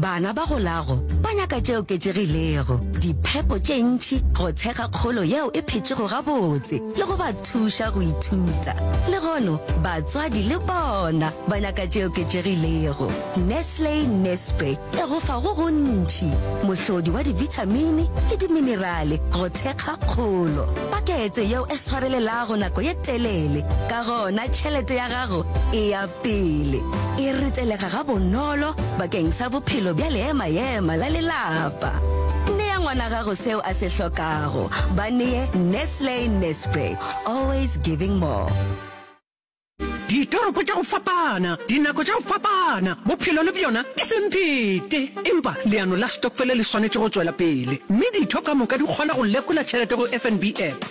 Bana ba go lago ba nyaka tše oketšegilego, diphepo tše ntši, go tshega kgolo yeo e phetšego gabotse le go ba thuša go ithuta. Le gono batswadi le bona ba nyaka tše oketšegilego. Nestle Nespre e go fa go gontši, mohlodi wa dibithamini le diminerale go thekga kgolo, pakete yeo e swarelelago nako ye telele, ka gona tšhelete ya gago e ya Pele, e ritselega gabonolo bakeng sa bophelo bja leema-ema la lelapa. Nea ngwana gago seo a se hlokago. Ba nee Nestle Nespray, always giving more. Ditoropo tša go fapana, dinako tša go fapana, bophelo le bjona ke semphete. Empa leano la stokfele le swanetše go tšwela pele, mme ditho ka moka di kgona go lekola tšhelete go FNB app.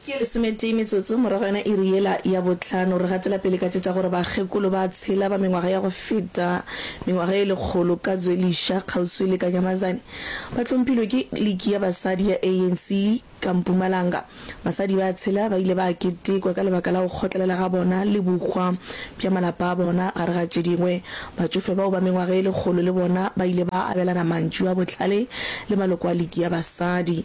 Ke lesometee metsotso morago ga iri yela ya bohlano, re gatela pele ka tše tša gore bakgekolo ba tshela ba mengwaga ya go feta mengwaga ye lekgolo ka Zweliša, kgauswi le Kanyamazane, ba hlompilwe ke Liki ya Basadi ya ANC ka Mpumalanga. Basadi ba tshela ba ile ba ketekwa ka lebaka la go kgotlelela ga bona le bohwa bja malapa a bona. Gare ga tše dingwe, batšofe bao ba mengwaga ye lekgolo le bona ba ile ba abelana mantšu a bohlale le maloko a Liki ya Basadi.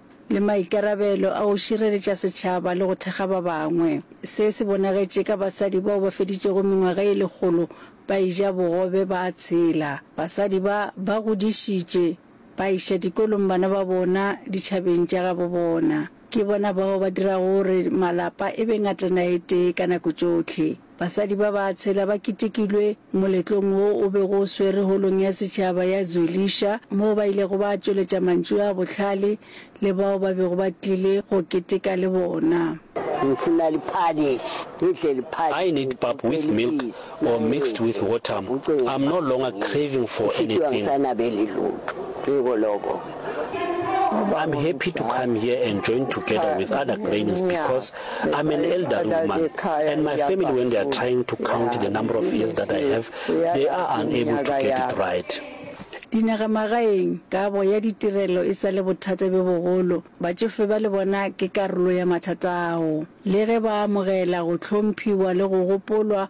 le maikarabelo a go šireletša setšhaba le go thekga ba bangwe. Se se bonagetše ka basadi bao ba feditšego mengwaga e lekgolo ba eja bogobe ba tshela. Basadi ba ba godišitše ba iša dikolong bana ba bona ditšhabeng tša gabo bona. Ke bona bao ba dirago gore malapa e be ngatana e tee ka nako tšohle. Basadi ba ba tshela ba ketekilwe moletlong wo o bego o swerwe Holong ya Setšhaba ya Zwelisha moo ba ilego ba tšweletša mantšu a bohlale le bao ba bego ba tlile go keteka le bona. I need pap with milk or mixed with water, I'm no longer craving for anything. I'm happy to come here and join together with other grains because I'm an elderly woman and my family when they are trying to count the number of years that I have, they are unable to get it right. Dinagamagaeng, kabo ya ditirelo e sa le bothata bjo bogolo. Batšofe ba le bona ke karolo ya mathata ao. Le ge ba amogela go hlomphiwa le go gopolwa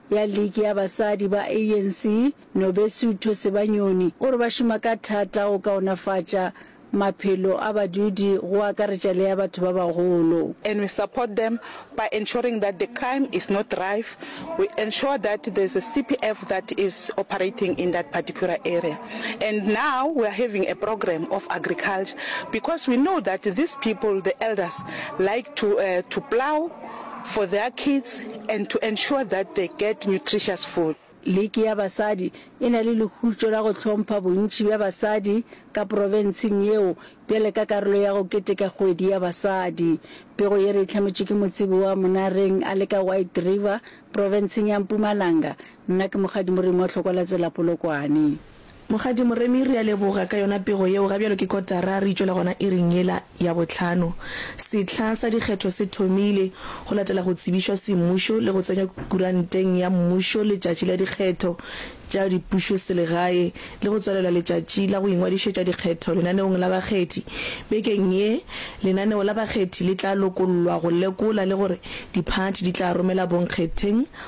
ya Liki ya Basadi ba ANC, Nobesutho Sebanyoni, o re ba šoma ka thata go kaonafatša maphelo a badudi go akaretša le a batho ba bagolo. and we support them by ensuring that the crime is not rife, we ensure that there's a CPF that is operating in that particular area and now we are having a program of agriculture because we know that these people, the elders, like to to plough, for their kids and to ensure that they get nutritious food. Liki ya basadi e na le lehutšo la go hlompha bontši bja basadi ka profenseng yeo bjale ka karolo ya go keteka kgwedi ya basadi. Pego ye re e hlametšwe ke motsebo wa Monareng a le ka White River, profenseng ya Mpumalanga. Nna ke Mokgadi Moremi wa Tlhokwalatsela Polokwane. Mokgadi Moremi, re a leboga ka yona pego yeo. Ga bjalo ke kotara re itšwela gona iring yela ya bohlano. Sehla sa dikgetho se thomile, go latela go tsebišwa semmušo le go tsenywa kuranteng ya mmušo letšatši la dikgetho tša dipušoselegae le go tswalela letšatši la go ingwadišetša dikgetho lenaneong la bakgethi. Bekeng ye, lenaneo la bakgethi le tla lokollwa go lekola le gore diphathi di tla romela bonkgetheng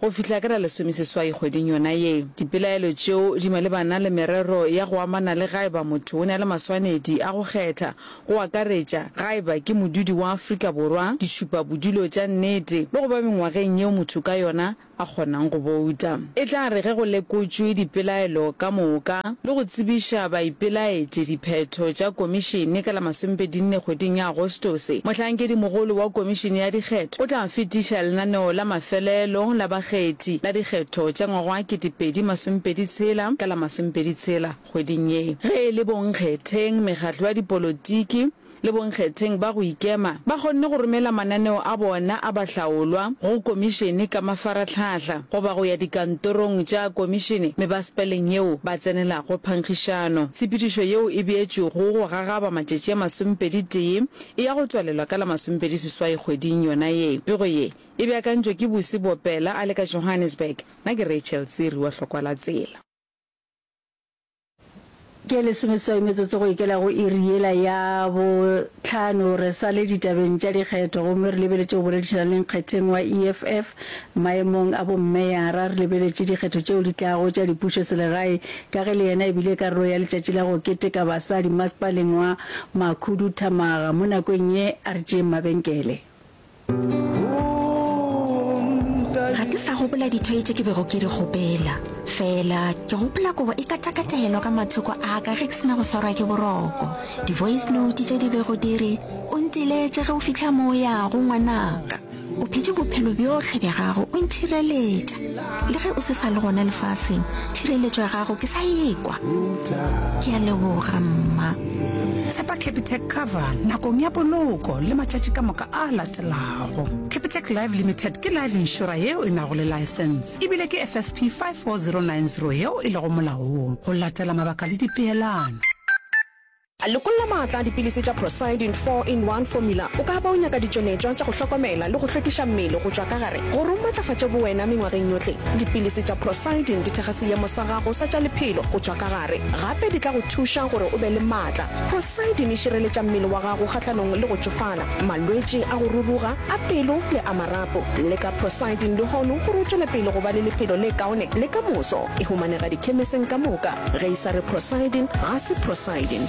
Go fihla ka la lesomeseswai kgweding yona ye, dipelaelo tšeo di malebana le merero ya go amana le gaeba motho o ne a le maswanedi a go kgetha, go akaretša gaeba ke modudi wa Afrika Borwa, ditšhupa bodulo tša nnete le go ba mengwageng yeo motho ka yona a kgonang go bouta. E tla re ge go lekotšwe dipelaelo ka moka, le go tsebiša baipelaetši diphetho tša Komišene ka la masomebedinne kgweding ya Agostose, Mohlankedimogolo wa Komišene ya Dikgetho o tla fetiša lenaneo la mafelelo la bakgethi la dikgetho tša ngwaga wa ketepedi masomepedi tshela ka la masomepedi tshela kgweding ye. Ge e le bonkgetheng, mekgatlo ya dipolotiki, le bonkgetheng ba go ikema ba kgonne go romela mananeo a bona a bahlaolwa go Komišene ka mafaratlhahla goba go ya dikantorong tša Komišene mebasepaleng yeo ba tsenelago phankgišano. Tshepedišo yeo e beetšwego go gagaba matšatši a masomepedi tee e ya go tswalelwa ka la masomepedi seswai kgweding yona ye. Pego ye e beakantšwe ke Busi Bopela a le ka Johannesburg. Na ke Rachel Siri wa Hlokwa la Tsela. Ke lesomeswai metsotso go ikela go iri yela ya bohlano. Re sa le ditabeng tša dikgetho gomme re lebeletše go boledišana le nkgetheng wa EFF maemong a bommeyara. Re lebeletše dikgetho tšeo di tlago tša dipušo selegae ka ge le yena e bile karolo ya letšatši la go keteka basadi masepaleng wa Makhuduthamaga. Mo nakong ye a re tšeeng mabenkele. ga ke sa gopola dithoi tše ke bego ke di gopela fela ke gopola kobo e katakatelwa ka mathoko a ka ge ke sena go swarwa ke boroko di-voice note tše di bego di re o ntiletše ge o fitlha mo o yago ngwanaka o phete bophelo bjohle bja gago o nthireletša Le ge o se sa le gona lefaseng, thireletšo ya gago ke sa ekwa. Ke a leboga, mma. Tshepa Capitec Cover nakong ya poloko le matšatši ka moka a latelago. Capitec Life Limited ke life inšora yeo e nago le laesense ebile ke FSP 54090 yeo e lego molaong go latela mabaka le dipeelano. Lekolla maatla a dipilisi tša Procyidin 4 in 1 Formula O ka ba o nyaka ditšonetšwa tša go hlokomela le go hlwekiša mmele go tšwa ka gare gore o matlafatše bowena mengwageng yohle. Dipilisi tša Procyidin di thekga seemo sa gago sa tša lephelo go tšwa ka gare. Gape di tla go thuša gore o be le maatla. Procyidin e šireletša mmele wa gago kgahlanong le go tšofala, malwetši a go ruruga, a pelo le a marapo. Leka Procyidin lehono gore o tšwele pele go ba le lephelo le kaone le ka moso. E humanega dikhemeseng ka moka. Ge e sa re Prosidin, ga se Prosidin.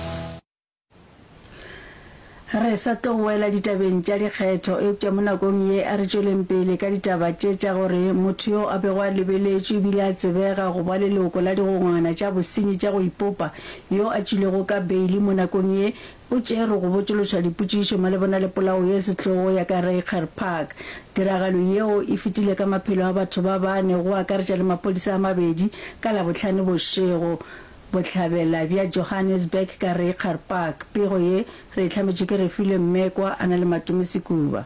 Re sa tlo boela ditabeng tša dikgetho, eupša mo nakong ye a re tšweleng pele ka ditaba tše tša gore motho yo a bego a lebeletšwe e bile a tsebega go ba leloko la digongwana tša bosenyi tša go ipopa yo a tšwilego ka beili mo nakong ye O tšere go botšološa dipotšišo malebana le polao ye sehlogo ya ka Reiger Park. Tiragalo yeo e fetile ka maphelo a batho ba bane go akaretša le maphodisa a mabedi ka Labohlano bošego. Bohlabela bja Johannesburg ka Reiger Park. Pego ye re e hlametšwe ke Refilwe Mmekwa a na le Matume Sekuba.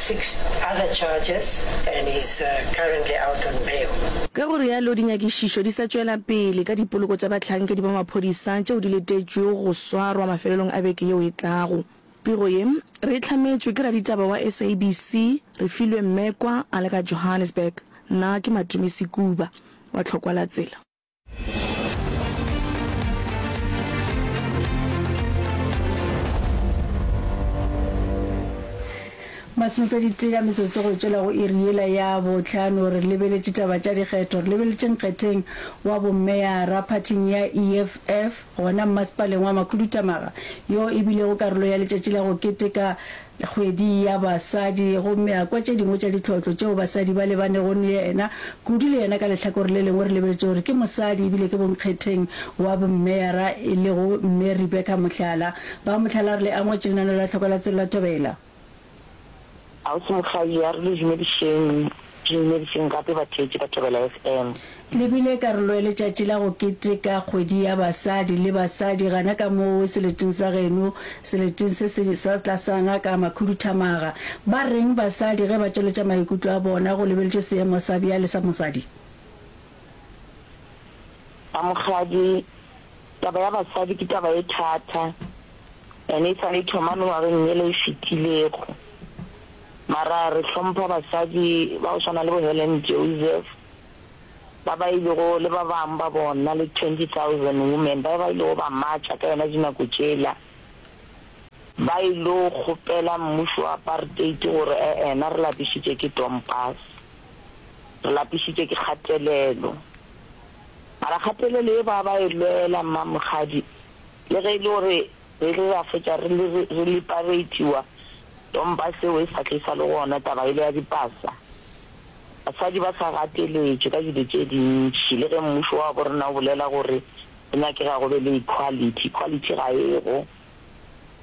Six other charges and he is currently out on bail. Ka go realo dinyakišišo di sa tšwela pele ka dipoloko tša bahlankedi ba maphodisa tšeo di letetšwego go swarwa mafelelong a beke yeo e tlago. Pego ye re e hlametšwe ke raditaba wa SABC Refilwe Mmekwa a le ka Johannesburg. Nna ke Matumisi Kuba wa Tlhokwalatsela. masomepedi tee ya metsotso go tšwela go iri yela ya botlhano re lebeletše taba tša dikgetho re lebeletše nkgetheng wa bommeyara phathing ya eff gona mmasepaleng wa makhudutamaga yo e bilego karolo ya letšatši la go keteka Kgwedi ya Basadi, gomme a kwa tše dingwe tša ditlotlo tšeo basadi ba lebanego ne yena, kudu le yena ka lehlakore le lengwe re lebeletše gore ke mosadi ebile ke bonkgetheng wa bommeyara e lego Mme Rebecca Mohlala. Ba Mohlala re le a ngwetši lenaneo la Tlhoko la Tselelathobela. Ausi Mokgadi, a re le dumedišeng Dinyereiseng gape batheetši ba Thobela FM. Le bile karolo ya letšatši la go keteka kgwedi ya basadi le basadi gana ka moo seleting sa geno, seleting se se sa tlasana ka makhuduthamaga. Ba reng basadi ge ba tšweletša maikutlo a bona go lebeletšwe seemo sa bjale sa mosadi? Bamogadi, Taba ya basadi ke taba e thata, ene e sa le e thoma mengwageng yela e fetilego. Mara re hlompha basadi ba go swana le bo Helen Joseph, ba ba ilego, le ba bang ba bona, le 20,000 women ba ba ilego ba matšha ka yona dinako tšela, ba ilo kgopela mmušo wa apartheid gore e-ena re lapišitše ke Dompas, re lapišitše ke kgatelelo. Mara kgatelelo ye ba ba e lwela, mma Mokgadi, le ge e le gore re ile ra fetša re re liberatiwa, Tompa seo e sa tle sa le gona taba yela ya dipasa. Basadi ba sa gateletšwe ka dilo tše dintši le ge mmušo wa borena o bolela gore go nyakega go be le equality, equality ga e go.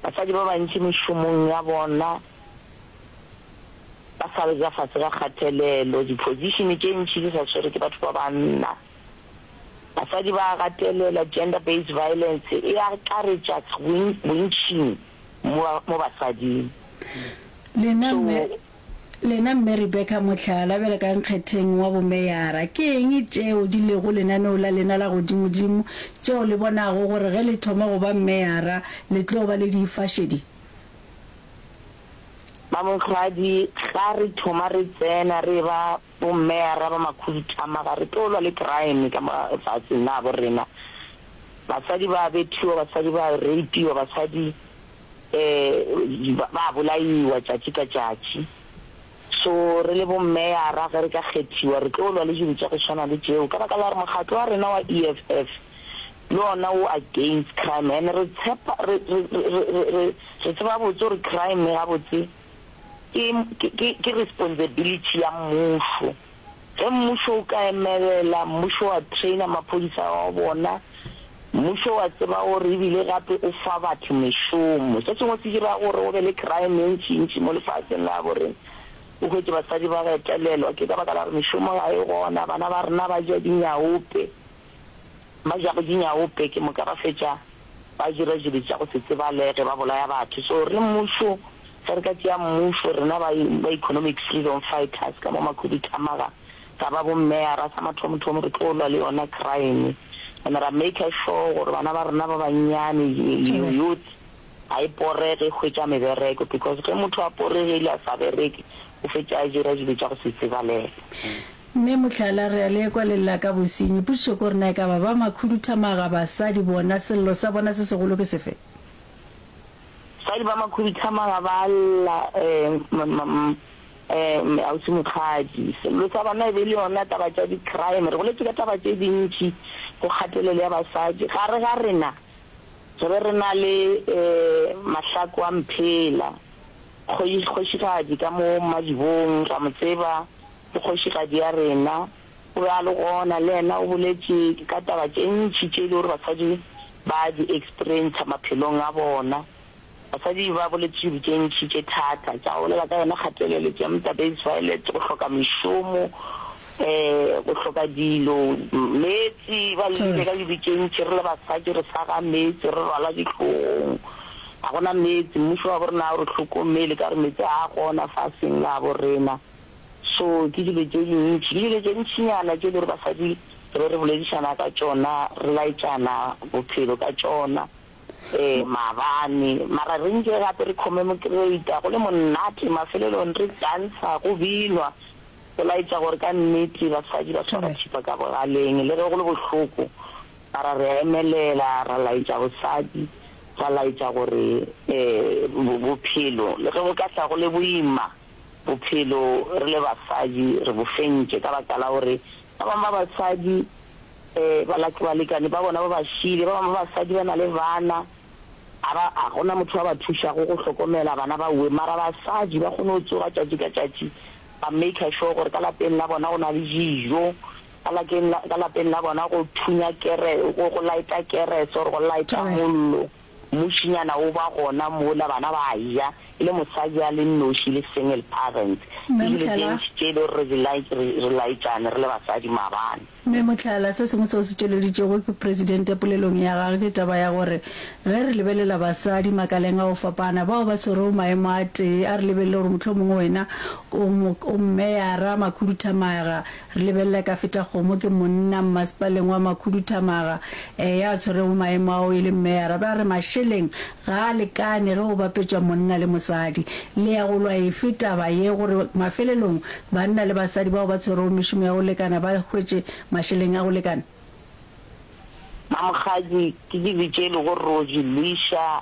Basadi ba bantši mešomong ya bona ba sa le ja fase ga kgatelelo, di-position tše ntši di sa swerwe ke batho ba banna. Basadi ba a gatelela, gender based violence e akaretša bontšing. mo, mo basading. Lena So, Mme, lena Mme Rebecca Mohlala, bjale ka nkgetheng wa bomeyara, ke eng tšeo di lego lenaneo la lena la godimodimo, tšeo le bonago gore ge le thoma go ba meyara le tlo ba le di fa šedi? Ba Monghadi, ga re thoma re tsena re eba Bommeara ba makhuduthama ga re tlo lwa le keraeme ka mo lefaseng la habo rena. Basadi ba a bethiwa, basadi ba a reipiwa, basadi um ba a bolaiwa tšatši ka tšatši. So re le bommeara ge re ka kgethiwa re tlo lwa le dilo tša go swana le tšeo ka baka la gore mokgatlo wa rena wa EFF le ona o against crime and re tshepa re re re re re tseba gabotse gore crime gabotse Ke, ke, ke, ke responsibility ya mmušo. Ge mmušo o ka emelela, mmušo wa trainer maphodisa wa bona, mmušo wa tseba gore ebile gape o fa batho mešomo. Se sengwe se dira gore go be le crime e ntšintši mo lefaseng la habo rena. O hwetše basadi ba retelelwa ke ka baka la gore mešomo ga e gona, bana ba rena ba ja dinyaope. Ba ja go di nyaope ke moka ba fetša ba dira dilo tša go se tsebalege, ba bolaya batho. So re mmušo, ge re ka tšea mmušo, rena ba ba economic freedom fighters ka mo Makhuduthamaga, ra ba bo meyara, sa mathomothomo re tlo lwa le yona crime and ra maker sure gore bana ba rena ba bannyane, youth, ga e porege e hwetša mebereko because ge motho a poregile a sa bereke o fetša a dira dilo tša go se tsebalege. Mme mohlala, re a le kwa le lla ka bosenyi. Potšišo ke gore na e ka ba ba makhuduthamaga, basadi bona, sello sa bona se segolo ke sefe? Basadi ba makhuduthamaga ba a lla, um-um-um-um-um, Ausi Mokgadi. Sello sa bona e be e le yona taba tša di-crime. Re goletše ka taba tše dintši, go kgatelelo ya basadi. Gare ga rena, re be re na le, um, Mahlaku a Mphela, kgoši, kgošigadi ka mo Mmadibong, ra mo tseba. ke kgošigadi ya rena. Go bjalo gona le yena o boletše ka taba tše ntši tše e le gore basadi ba di experiencea maphelong a bona. Basadi ba boletše dilo tše ntši tše thata tša go bolela ka yona kgatelelo, gender based violence, go hloka mešomo, um go hloka dilo, meetse. Ba llelile ka dilo tše ntši, re le basadi re sa ga meetse, re rwala dihlogong, ga gona meetse. Mmušo wa bo rena ga o re hlokomele ka gore meetse ga a gona faseng la bo rena. So ke dilo tše dintši, ke dilo tše ntšinyana tše e le gore basadi re be re boledišana ka tšona, re laetšana bophelo ka tšona. Ee, maabane. Mara re nke gape re comemocrata, go le monate, mafelelong re dansa, go binwa, go laetša gore ka nnete basadi ba swara thipa ka bogaleng le ge go le bohloko. Mara re a emelela, ra laetša bosadi, ra laetša gore bophelo le ge bo ka tla go le boima, Bophelo re le basadi re bo fentše ka baka la gore ba bangwe ba basadi balekane ba bona ba ba šiile, ba bangwe ba basadi ba na le bana, ga ba, ga go na motho wa ba thušago go hlokomela bana ba wee. Mara basadi ba kgone go tsoga tšatši ka tšatši ba maker sure gore ka lapeng la bona go na le dijo, ka lapeng la bona go thunya kerese, go light-a kerese or go light-a mollo. Mmušinyana o ba gona mola, bana ba a ja, e le mosadi a le nnoši, le single parent. Mme Ebile Mohlala. gentši tše e le gore re di laet-, re, re laetšane re le basadi maabane. Mme Mohlala, se sengwe se o se tšweleditšego ke Presidente polelong ya gage ke taba ya gore ge re lebelela basadi makaleng a go fapana bao ba swerego maemo a tee, a re lebelele gore mohlomongwe wena o mo, o mmeyara, makhuduthamaga, Re lebelela Kafetakgomo, ke monna mmasepaleng wa Makhuduthamaga, eya a tshwerego maemo ao e leng meyara, ba re mašeleng ga a lekane ge go bapetšwa monna le mosadi. Le ya go lwa efe taba ye gore mafelelong banna le basadi bao ba tshwerego mešomo ya go lekana ba hwetše mašeleng a go lekana? Mamokgadi, ke ke bitše le go Rosie, Lisha,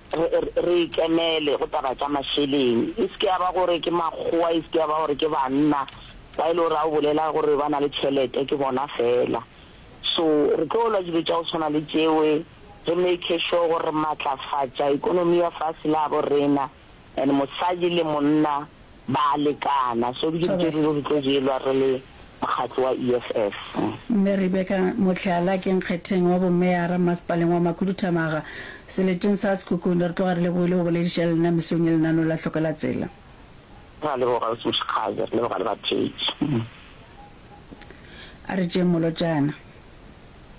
re, re, re e kenele go taba tša mašeleng. E se ke ya ba gore ke makgowa, e se ke ya ba gore ke banna ba e le gore a o bolela gore ba na le tšhelete, ke bona fela. So re tlo lwa dilo tša go tshwana le tšeo, re make sure gore re matlafatša ekonomi ya fase la bo rena, and mosadi le monna Ba a lekana. So ke dutše re re re tlo jelwa re le mokgatlo wa EFF. Mme Rebecca Motlhala, ke nkgetheng wa bommeara Mmasepaleng wa Makhuduthamaga, seleteng sa Sekhukhune. Re tloga re lebogile go bolediša le nna mesong ye lenaneo la Tlhokelatsela. Re a leboga Ausi Moshekgabe, re leboga le batheetši. A re tšeeng molotšana.